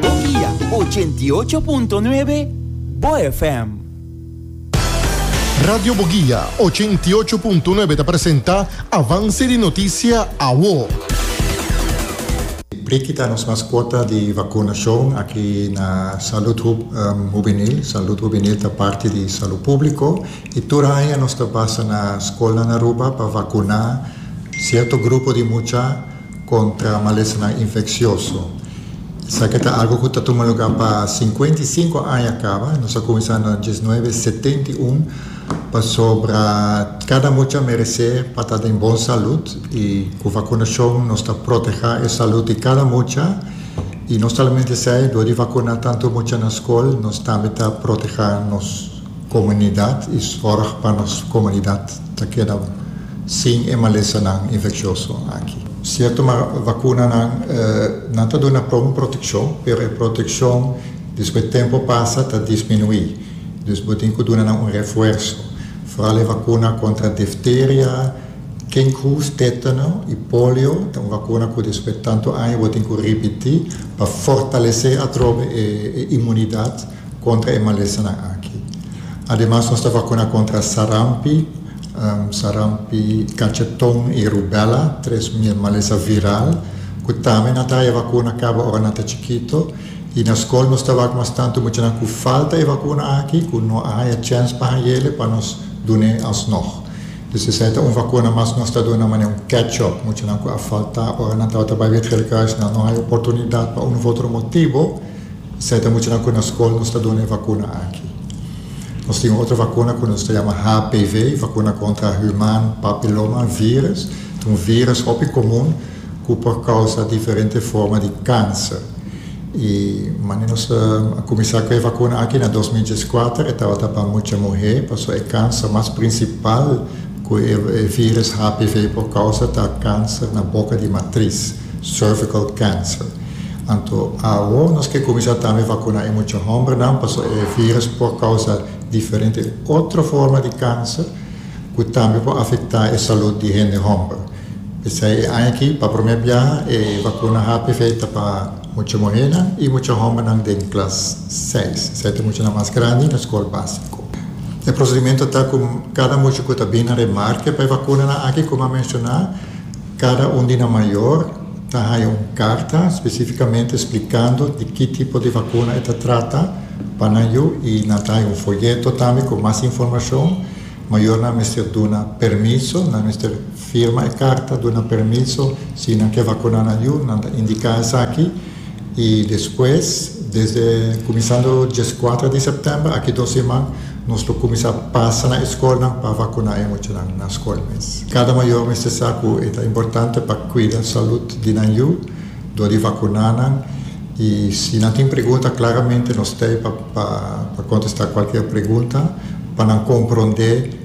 Bokia ochenta i ocho punto nuebe, bo FM. Radio Bogia ochenta i ocho punto nuebe ta presenta Avance di Noticia Awo. Briki ta nos mascota di vacunacion aki na Salud Hub Hubenil. Salud Hubenil ta parti di Salud Publico y tur aña nos ta pasa na scolnan Aruba pa vacuna cierto grupo di mucha kontra malesanan infeksioso. Esaki ta algu ku ta tuma lugá pa sinkuenta i sinku aña kaba. Nos a kuminsá na diesnuebe setenta i un pasobra kada mucha meresé pa ta den bon salud i ku vakunashon nos ta protehá e salud di kada mucha i no solamente esei dor di vakuná tantu mucha na skol nos tambe ta protehá nos Komunidat i sòrg pa nos komunidat ta keda sin e malesanan infeksioso aki. Sierto ma vakunanan nan ta duna pron protekshon pero e protekshon despues tempu pasa ta disminuí. Dus bo tin ku duna nan un refuerso, foral e vakuna kontra difteria, kinkhoes, tetano i polio ta un vakuna ku despues tantu aña bo tin ku ripití pa fortalesé atrobe e imunidat. Kontra e malesanan aki. Ademas nos ta vakuna kontra sarampi, sarampi, kacheton i rubela, tres malesa viral ku tambe nan ta haña vakuna kaba ora nan ta chikito. I na skol nos ta wak mas tantu muchanan ku falta e vakuna aki ku no a haña chèns pa haña el pa nos dun'e alsnog. Dus esei ta un vakuna mas ku nos ta duna manera un catch-up. Muchanan ku a faltá ora nan tabata bai Wit Gele Kruis nan no haña oportunidat pa un uf otro motibo. Esei ta muchanan ku na skol nos ta duna e vakuna aki. Nos tin un otro vakuna ku nos ta yama HPV, Vakuna Kontra Human Papiloma Virus. Ta un virus hopi komun ku por kousa diferente forma di kanser. I manera nos a kuminsá ku e vakuna aki na dos mil dies kuater e tabata pa mucha muhé pasobra e kanser mas prinsipal ku e virus HPV por kousa ta kanser na boka di matris. Cervical cancer. Anto awo nos ke kuminsá tambe vakuná e mucha hòmbernan pasobra e vírùs por kousa diferente otro forma di kanser ku tambe por afektá e salùt di hende hòmber. P'esei e aña aki pa promé biaha e vakuna HPV ta pa mucha muhénan i mucha hòmbernan den klas seis, esei ta muchanan mas grandi na skol básiko. E prosedimentu ta ku kada mucha ku ta bini na remarke pa e vakunanan aki, komo a menshoná, Cada un di nan mayor ta haya un carta specificamente explicando di ki tipo di vacuna e ta trata pa nan yu y nan ta haya un folleto tambe cu mas informacion. Mayornan mester duna permiso, nan mester firma e carta duna permiso si nan ke vacuna nan yu, nan ta indica esaki. Y despues desde cuminsando diescuatra di september aki dos siman nos lo cuminsa pasa na escolnan pa vacuna e muchanan na scol mes. Cada mayor mester sa cu e ta importante pa cuida salud di nan yu dor di vacuna nan y si nan tin pregunta claramente nos ta ey pa contesta cualkier pregunta pa nan compronde.